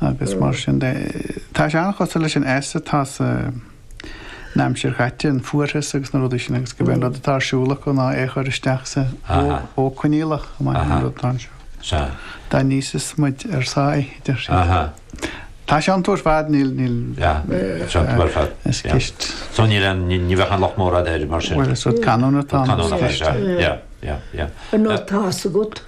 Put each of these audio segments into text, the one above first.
agus mar sin de. Tá sé an-chosúil leis an s atá sa n-aimsir chaite, an fuarthas agus na rudaí sin agus gurb é an rud atá ar siúl acu ná é a chur isteach sa mhodh coinníollach chomh maith leis an rud atá anseo. Dá n-íosfas muid ár sáith idir thríd. Tá sé suntasach ar fad, níl, níl, is ceist. So ní raibh, ní bheadh an locht mór fhada air mar sin. Bhuel, is rud canúna atá ann, is ceist. An rud atá agat.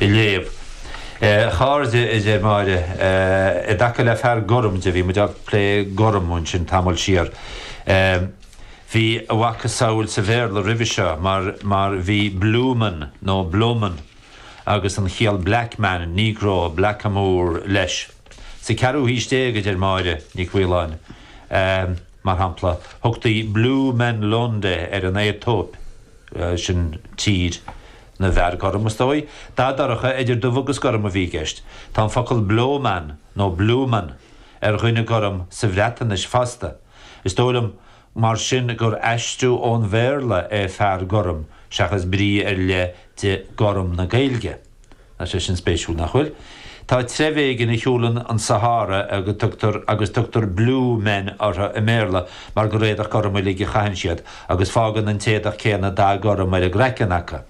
a léamh. A chairde, a deir Máire, i dtaca le fear gorm de, bhí muid ag plé gorm ansin tamall ó shin, bhí a mhacasamhail sa Bhéarla roimhe seo mar, mar bhí bloman nó bleuman agus an chiall black man, negro, blackamoor leis. Sa gceathrú haois déag, a deir Máire Ní Choileáin, mar shampla, thugtaí Blomen londe ar an Aetóip, sin tír. Na bhfear gorm, is dóigh, dath dorcha idir dubh agus gorm a bhí i gceist. Tá an focal blowmon nó blewmon ar dhuine gorm sa Bhreatnais fosta. Is dóigh liom, mar sin, gur aistriú ón Bhéarla é fear gorm seachas brí ar leith de 'gorm' na Gaeilge. Tá sé sin spéisiúil, nach bhfuil? Tá treibh éigin a shiúlann an Sahára a dtugtar agus tugtar Blue Men orthu i mBéarla mar gur éadach gorm uilig a chaitheann siad agus fágann an t-éadach céanna dath gorm ar a gcraiceann acu.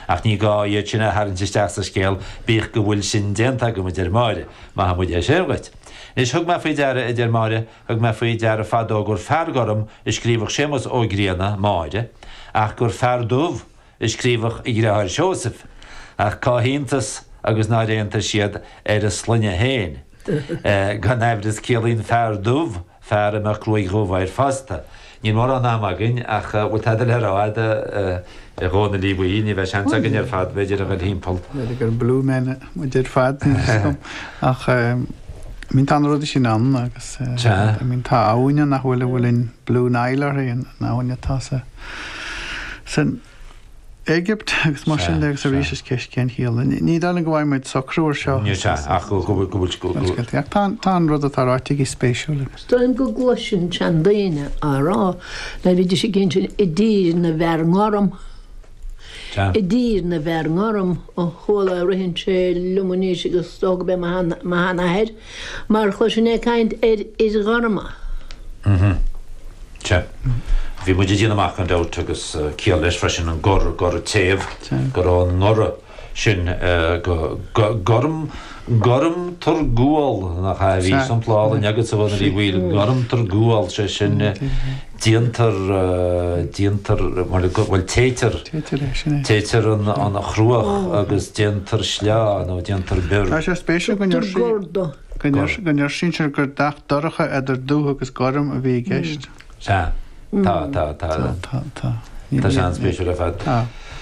Ach ní gá iad sin a tharraingt isteach sa scéal, bíodh go bhfuil sin déanta agam, a deir Máire. Maithfidh muid é sin dhuit. Anois, thug mé faoi deara, a deir Máire, thug mé faoi deara fadó gur fear gorm a scríobhadh Séamus Ó Grianna, Máire, ach gur fear dubh a a scríobhadh a dhriotháir Seosamh, ach cá hiontas agus nár aontaigh siad ar a sloinne féin. Gan amhras ciallaíonn fear dubh fear a mbeadh gruaig dhubh air fosta. Níl mórán ama againn ach an bhfuil tada le rá agat a Dhónaill Uí Bhaoill, ní bheadh seans againn ar fad b'fhéidir a dhul thimpeall. B'fhéidir gur blue men muid ar fad ach bhí an rud sin ann agus tá abhainn ann nach bhfuil a bhfuil an Blue Nile uirthi, an abhainn atá sa. san Éigipt agus mar sin de agus arís is ceist cén chiall. Ní dóigh liom go bhfaighidh muid socrú air seo. Níl sé, ach go bhfuil. Ach tá an rud atá ráite aici spéisiúil agus. Dóigh go gcluinfinn seandaoine á rá dá mbeidís ag gabháil sin i dtír na bhfear gorm. I dtír na bhfear gorm ó chuala ritheann sé liom anois agus dócha go mbíodh mo sheanathair. Mar a chéile sin ag caint ar fhir ghorma. Mhm. Sea. Bhí muid ag déanamh amach gan dabht, agus ciall leis freisin, an gor, goradh téamh, go raibh an goradh sin go gorm, gorm thar ghual, nach ea? Bhí sampla álainn agatsa, a Dhónaill Uí Bhaoill, gorm thar ghual, sé sin, déantar, déantar, bhuel, bhuel, téitear, Téitear é, sin é. téitear an, an chruach agus déantar sleá nó déantar bior. Tá sé spéisiúil go ndeir Tugtar sí, gordo. go ndeir, go ndeir sinsear gur dath dorcha idir dubh agus gorm a bhí i gceist. Sea, tá, tá, tá, Tá, tá, tá. tá sé an-spéisiúil ar fad. Tá.